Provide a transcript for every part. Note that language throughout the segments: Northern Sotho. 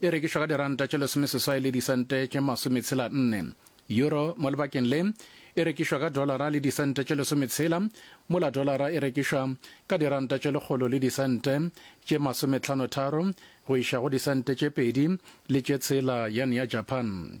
E rekišwa ka diranta tše lesomeseswai le disente tše masometshela nne. Euro mo lebakeng le e rekišwa ka dolara le disente tše lesometshela, mola dolara e rekišwa ka diranta tše lekgolo le disente tše masometlhano-tharo go iša go disente tše pedi le tše tshela yan ya Japan.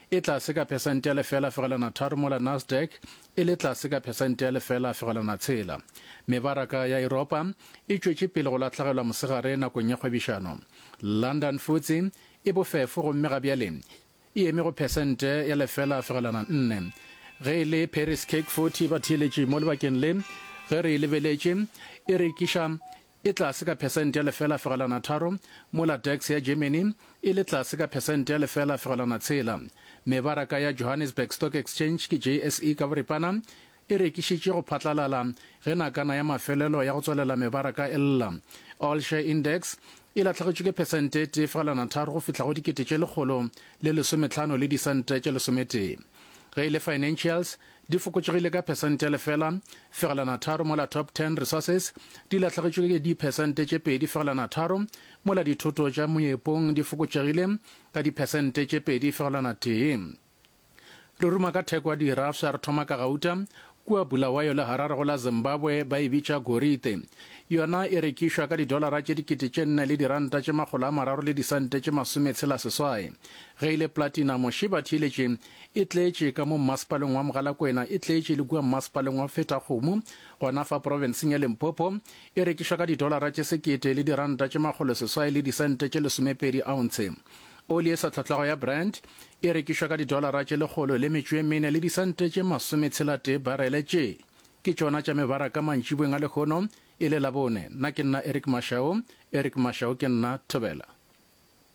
e tlase ka phesente ya lefela fegelwana tharo mola Nasdaq e le tlase ka phesente ya lefela fegelwana tshela. Mebaraka ya Europa e tšwetše pele go latlhegelwa mosegare nakong ya kgwebišano. London Futse e bofefo gomme ga bjale e eme go phesente ya lefela fegelwana nne ge e le Paris CAC 40 ba theeletše mo lebakeng le ge re e lebeletše e rekiša e tlase ka phesente ya lefela fegelwana tharo, mola DAX ya Germany e le tlase ka phesente ya lefela fegelwana tshela. Mebaraka ya Johannesburg Stock Exchange ke JSE ka boripana e rekišitše go phatlalala ge nakana ya mafelelo ya go tswalela mebaraka e lla. All Share Index e lahlegetšwe ke phesente e tee fegelwana tharo go fihla go dikete tše lekgolo le lesometlhano le disente tše lesometee. Ge e le Financials, di fokotšegile ka phesente ya lefela fegelwana tharo mola top 10 resources di lahlegetšwe ke diphesente tše pedi fegelwana tharo mola dithoto tša moepong di fokotšegile ka diphesente tše pedi fegelwana tee re ruma ka theko ya dirafsa re thoma ka gauta kua bulawayo le harare go la zimbabwe ba e bitša gorite yona e rekišwa ka didolara tše dikete tše nne le diranta tše makgolo a mararo le disente tše masometshela seswai ge e le platinum šiba theeletše E tletše ka mo mmasepaleng wa Mogalakwena, e tletše le kua mmasepaleng wa Fetakgomo, gona fa profenseng ya Limpopo. E rekišwa ka didolara tše sekete le diranta tše makgolo seswai le disente tše lesomepedi ounce. Oli e sa tlhotlhago ya Brent e rekišwa ka didolara tše lekgolo le metšo e mene le disente tše masometshela-tee barele. Tše ke tšona tša mebaraka mantšibweng a lehono e le Labone. Na ke nna Eric Mashau. Eric Mashau Ke nna Thobela.